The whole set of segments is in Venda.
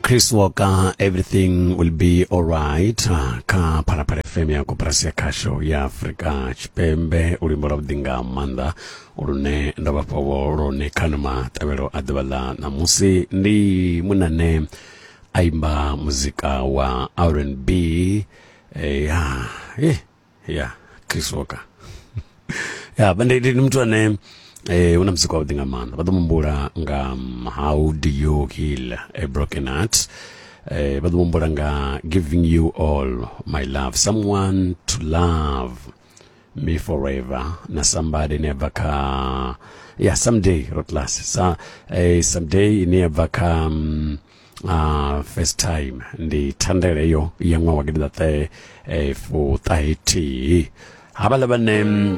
chris walker everything will be alright ah, kha phalaphala fm ya koperasi ya khasho ya afrika tshipembe u limbo lwavhuḓi nga maanḓa lune ndo vhafhawo lone khani matavhelo a ḓuvha ḽa ṋamusi ndi munane a imba muzika wa rnb eh, ya eh. ya chris walker ya ndi ndi muthu ane eh una muzika wavhuḓi nga maanḓa vha ḓo mumbula nga um, how do you heal a broken heart eh vha ḓo mumbula nga giving you all my love someone to love me forever na somebody never ka yeah someday rotlas sa eh someday ine ya bva kha um, uh, first time ndi thandele eyo ya ṅwaha wa gidiḓaṱahe eh, fuṱahe thihi havhaḽa vhane mm,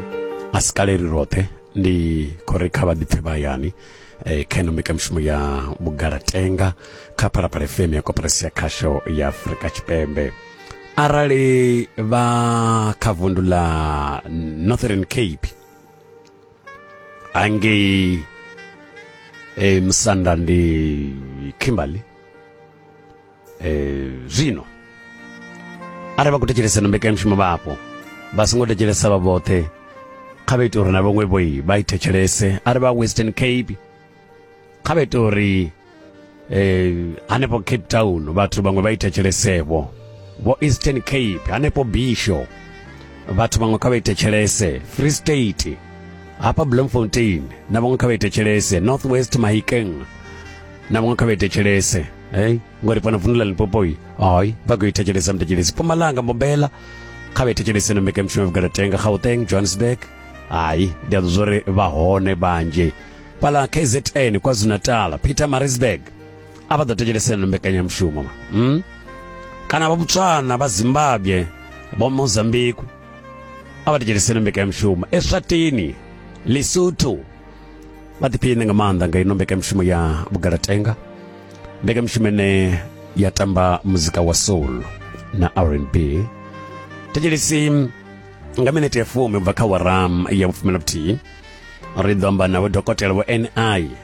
a si kale ri roṱhe ndi khou ri kha vha ḓipfe vha hayani eh, kha ino mbekamishumo ya vhugalatenga kha phalaphala fm ya koperasi ya khasho ya afurika tshipembe arali vha kha vundu ḽa northern cape hangei e, musanda ndi kimberly e, zwino arali vha khou thetshelesa no mbekanyamushumo vhapo vha songo thetshelesa vha vhoṱhe kha vha ite uri na vhaṅwe vhoi vha i thetshelese arali vha western cape kha vhe tori eh hanefho Cape Town vhathu vhaṅwe vha ita tshelesevho vho Eastern Cape hanefho Bisho vhathu vhaṅwe kha vha ita tshelese Free State hapa Bloemfontein na vhaṅwe kha vha ita tshelese North West Mahikeng na vhaṅwe kha vha ita tshelese hey ngori fana vundu la Limpopo yi hayi vha khou ita tshelese mta tshelese Mpumalanga Mbombela kha vha ita tshelese na Mekemshwe Vukalatenga Gauteng Johannesburg hayi ndi a zwo ri vha hone vhanzhi fhala kzn kwazulu-natal peter marisburg a vha ḓo thetshelesela na mbekanyamushumo hmm? kana vha botswana vha zimbabwe vha mozambique a vha thetshelesela mbekanyamushumo eswatini lesotho vha ḓiphiṋe nga maanḓa nga ino mbekanyamushumo ya vhugalatenga mbekanyamushumo ine ya tamba muzika wa soul na rnb thetshelesi nga minete ya fumi ubva kha waram ya vhufumi na vhuthihi ri ḓo amba navho dokotela vho ni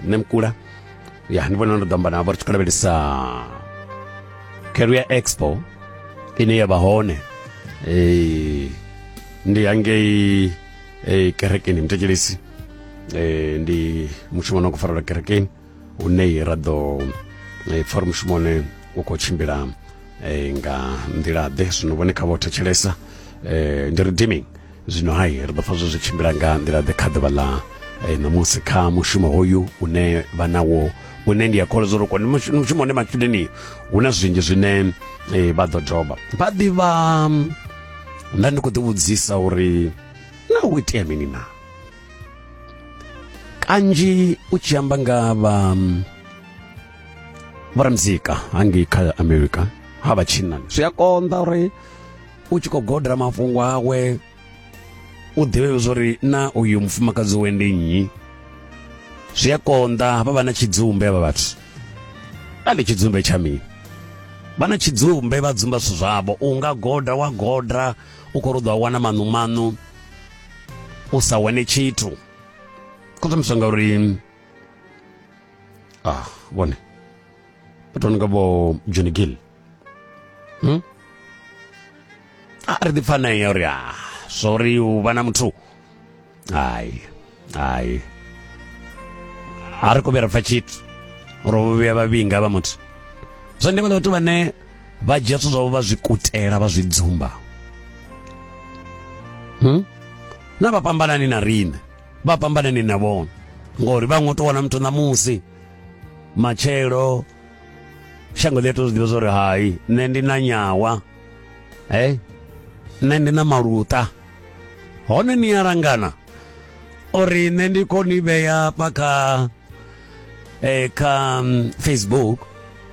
nṋe mkula ya ndi vhona ndo ḓo amba navho ri tshi khou lavhelesa career expo ine ya vha hone eh, ndi hangei eh, kerekeni mutekelisi eh, ndi mushumo no khou farelwa kerekeni hune ra ḓo eh, pfa uri mushumoni u khou tshimbila eh, nga nḓila-ḓe zwino vhone kha vho thetshelesa eh, ndi redeeming zwino hai ri ḓo pfa zwo zwi tshimbila nga nḓila-ḓe kha ḓuvha ḽa ṋamusi kha mushumo hoyu une vha nawo une ndi a kholwa zwo ri kone mushumo une matshudeni hu na zwinzhi zwine vha ḓo doba vha ḓivha nda ndi khou ḓivhudzisa uri na u itea mini na kanzhi u tshi amba nga vha mm, vhoramuzika hangei kha america ha vha tshinnani zwi a konḓa uri u tshi khou godela mafhungo awe u ḓivhe zwori na uyu mufumakadzi we ndi nnyi zwi a konḓa hafha vha na tshidzumbe avha vhathu a ndi tshidzumbe tsha mini vha na tshidzumbe vha dzumba zwithu zwavho u nga goda wa goda u khou ri u ḓo wana maṋu maṋu u sa wane tshithu khoṱomiswa ngauri ah vhone vhathu vha no nga vho john gill hmm? a ah, ri ḓi pfanea uri a ah, zwa uri u vha na muthu hai hai a ri kho vhuya ra pfa tshithu ro vhuya vhavhinga vha muthu zwa ndeme ḽa vhathu vhane vha dzhia zwithu zwavho vha zwi kutela vha zwi dzumba hmm? na vha fhambanani na riṋe vha fhambanani na vhone ngori vha ngo to wana muthu ṋamusi matshelo shango ḽi a to zwi ḓivha zwa hai nṋe ndi na nyawa e nṋe ndi na maluta hone ni a langana uri nṋe ndi koni vhea fha kha eh, kha mm, facebook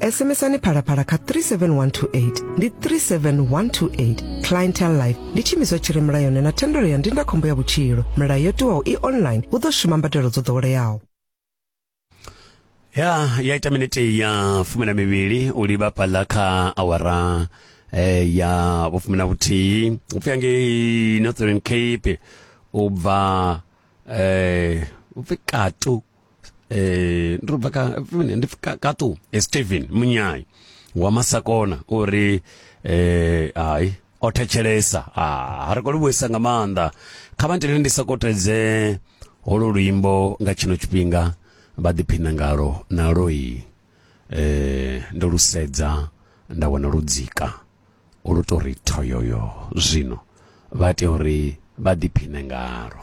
SMSani phalaphala kha 37128 ndi 37128 clientele life ndi tshiimiswa tshi re mulayoni na thendelo ya ndindakhombo ya vhutshilo milayo yo tiwaho i online hu ḓo shuma mbadelo dzo ḓoweleaho ya ya ita minete ya fumi na mivhili u livha fhaḽa kha awara eh, ya vhufumi na vhuthihi upfi angei northern cape u bva eh, upfi katu eh ndo bva ka ndi ka tu eh, Steven Munyai wa Masakona uri eh ai o thetshelesa ah ha ri kho livhuisa nga maanḓa kha vha ntele ndi sa kotedze holo luimbo nga tshino tshifhinga vha ḓiphina ngalo na loi eh ndo lusedza nda wana ludzika ulu tori thoyoyo zwino vha tea uri vha ḓiphine ngalo